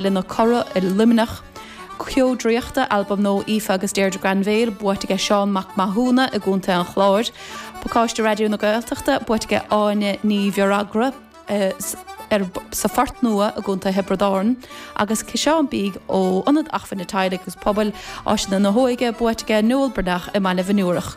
le Nóra i Luimneach. Ceo Draíochta, albam nua Aoife agus Deirdre Granville, buaite aige Seán Mac Mathúna i gContae an Chláir. Pacáiste Raidió na Gaeltachta, buaite aige Áine Ní Mheachair sa Phort Nua i gContae Thiobraid Árann agus ciseán bídh ó Ionad Acmhainne Teaghlaigh agus Pobail, Áiseanna na hÓige, buaite aige Noel Breathnach i mBaile Mhioniúrach.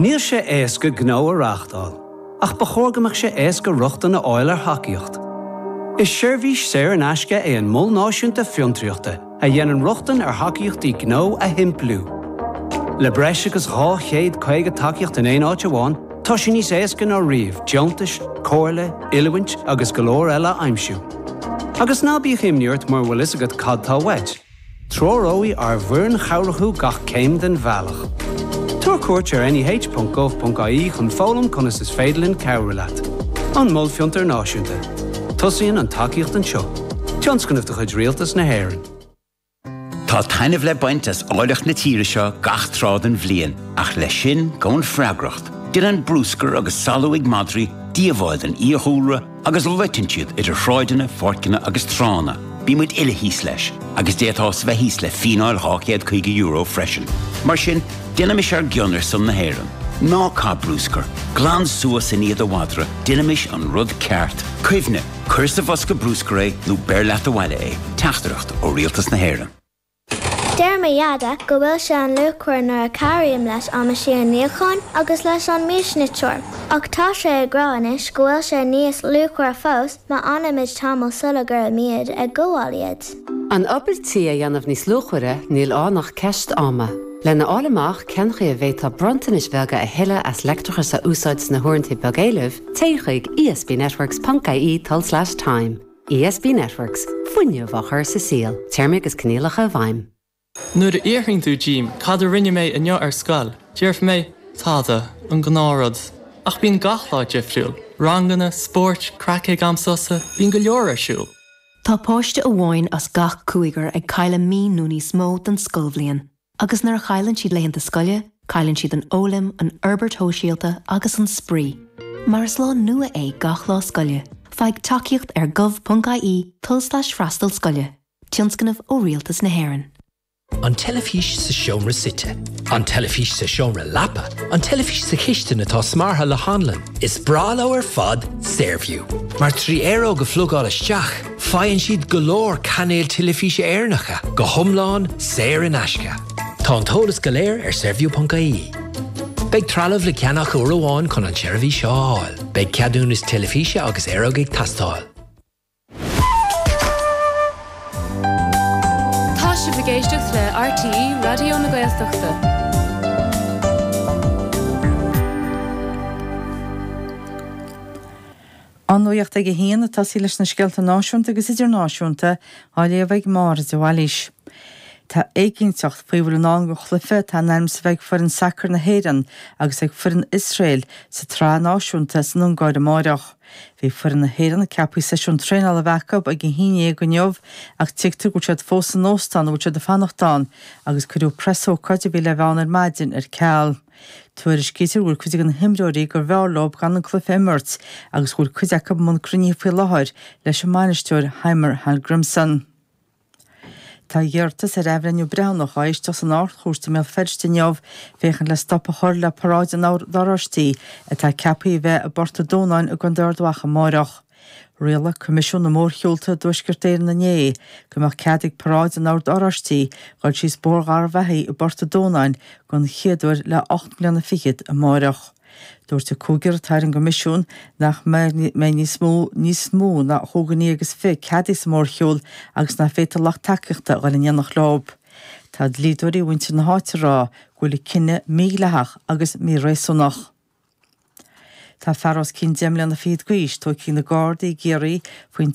Níl sé éasca gnó a reáchtáil, ach ba chóir go mbeadh sé éasca rochtain a fháil ar thacaíocht. Is seirbhís saor in aisce é an Mol Náisiúnta Fiontraíochta a dhéanann rochtain ar thacaíochtaí gnó a shimpliú. Le breis agus 250 tacaíocht in aon áit amháin, tá sé níos éasca ná riamh deontais, comhairle, oiliúint agus go leor eile a aimsiú. Agus ná bíodh imní ort mura bhfuil fhios agat cad tá uait, treoróidh ár bhfoireann chabhrach thú gach céim den bhealach. Tabhair cuairt ar neh.gov.ie chun foghlaim conas is féidir linn cabhrú leat. An Mol Fiontar Náisiúnta. Tosaíonn an tacaíocht anseo. Tionscnamh de chuid Rialtas na hÉireann. Tá taitneamh le baint as áilleacht na tíre seo gach tráth den bhliain, ach leis sin gabhann freagracht. Déanann bruscar agus salú ag madraí díobháil don fhiadhúlra agus loiteann siad idir shráideanna, pháirceanna agus tránna. Bíonn muid uile thíos leis, agus d'fhéadfá bheith thíos le fíneáil €250 freisin. Mar sin, déanaimis ár gcion ar son na hÉireann. Ná caith bruscar, glan suas i ndiaidh do mhadra, déanaimis an rud ceart. Cuimhnigh. Cuir sa bhosca bruscair é nó beir leat abhaile é. Teachtaireacht ó Rialtas na hÉireann. Deir mo Dhaid go bhfuil sé an-luachmhar nuair a chabhraím leis an meaisín níocháin agus leis an miasniteoir, ach tá sé ag rá anois go bhfuil sé níos luachmhaire fós má fhanaimid tamall sula gcuirfimid ag gabháil iad. An obair tí a dhéanamh níos luachmhaire, níl ann ach ceist ama. Lena fháil amach cén chaoi a bhféadfá bronntanais bheaga a thuilleadh as leictreachas a úsáid sna huaireanta beag éilimh, téigh chuig esbnetworks.ie tl/time. ESB Networks, fuinneamh á chur sa saol, téarmaí agus coinníollacha i bhfeidhm. Nuair a fhiafraíonn tú díom cad a rinne mé inniu ar scoil, déarfaidh mé, tada, an gnáthrud. Ach bíonn gach lá difriúil, ranganna, spóirt, craic ag am sosa, bíonn go leor ar siúl. Tá páiste amháin as gach cúigear ag cailleadh mí nó níos mó den scoilbhliain agus nuair a chailleann siad laethanta scoile, cailleann siad an fhoghlaim, an fhorbairt shóisialta agus an spraoi. Mar is lá nua é gach lá scoile, faigh tacaíocht ar gov.ie, tulslais freastal scoile. Tionscnamh ó Rialtas na hÉireann. An teilifís sa seomra suite. An teilifís sa seomra leapa. An teilifís sa chistin atá smeartha le hanlann. Is breá leo ar fad Saorview. Mar trí aeróg a phlugáil isteach, faigheann siad go leor cainéil teilifíse Éireannacha, go hiomlán saor in aisce. Tá an t-eolas go léir ar Saorview.ie. Beidh trealamh le ceannach uair amháin chun an tseirbhís seo a fháil. Beidh ceadúnas teilifíse agus aeróg ag teastáil. Tá sibh ag éisteacht le RTÉ Raidió na Gaeltachta. An nuacht ag a haon ag tosaí leis na scéalta náisiúnta agus idirnáisiúnta á léamh ag Máire de Bhailís. Tá éiginnteacht faoi a bhfuil i ndán don chluife atá in ainm is a bheith ag foireann sacair na hÉireann agus ag foireann Iosrael sa tsraith náisiúnta san Ungáir amáireach. Bhí foireann na hÉireann ceaptha seisiún traenála a bheith acu ag a haon déag inniu ach tuigtear go bhfuil siad fós san óstán a bhfuil siad ag fanacht ann agus cuireadh preasócáid a bhí le bheith ann ar maidin ar ceal. Tuairiscítear go bhfuil cuid de na himreoirí gurbh fhearr leo gan an cluiche a imirt agus go bhfuil cuid acu i mbun cruinnithe faoi láthair leis an mbainisteoir Heimir Hallgrímsson. Tá iarratas ar athbhreithniú breithiúnach á éisteacht san Ard-Chúirt i mBéal Feirste inniu, féachaint le stop a chur le paráid an Oird Oráistigh, atá ceaptha a bheith i bPort a' Dúnáin i gContae Ard Mhacha amárach. Rialaigh Coimisiún na Mórshiúlta i dTuaisceart Éireann inné go mbeadh cead ag paráid an Oird Oráistigh dul síos Bóthar Gharbhachaidh i bPort a' Dúnáin den chéad uair le ocht mbliana fichead amárach. Dúirt an cúigear atá ar an gCoimisiún nach mbeidh níos mó níos mó ná chúig dhuine agus fiche ceadaithe sa mhórshiúl agus nach bhféadfadh lucht tacaíochta a dhul in éineacht leo. Tá dlíodóirí mhuintir na háite ag rá go bhfuil an cinneadh mídhleathach agus míréasúnach. Tá fear os cionn deich mbliana fichead d'aois tógtha ag na Gardaí i gCiarraí faoin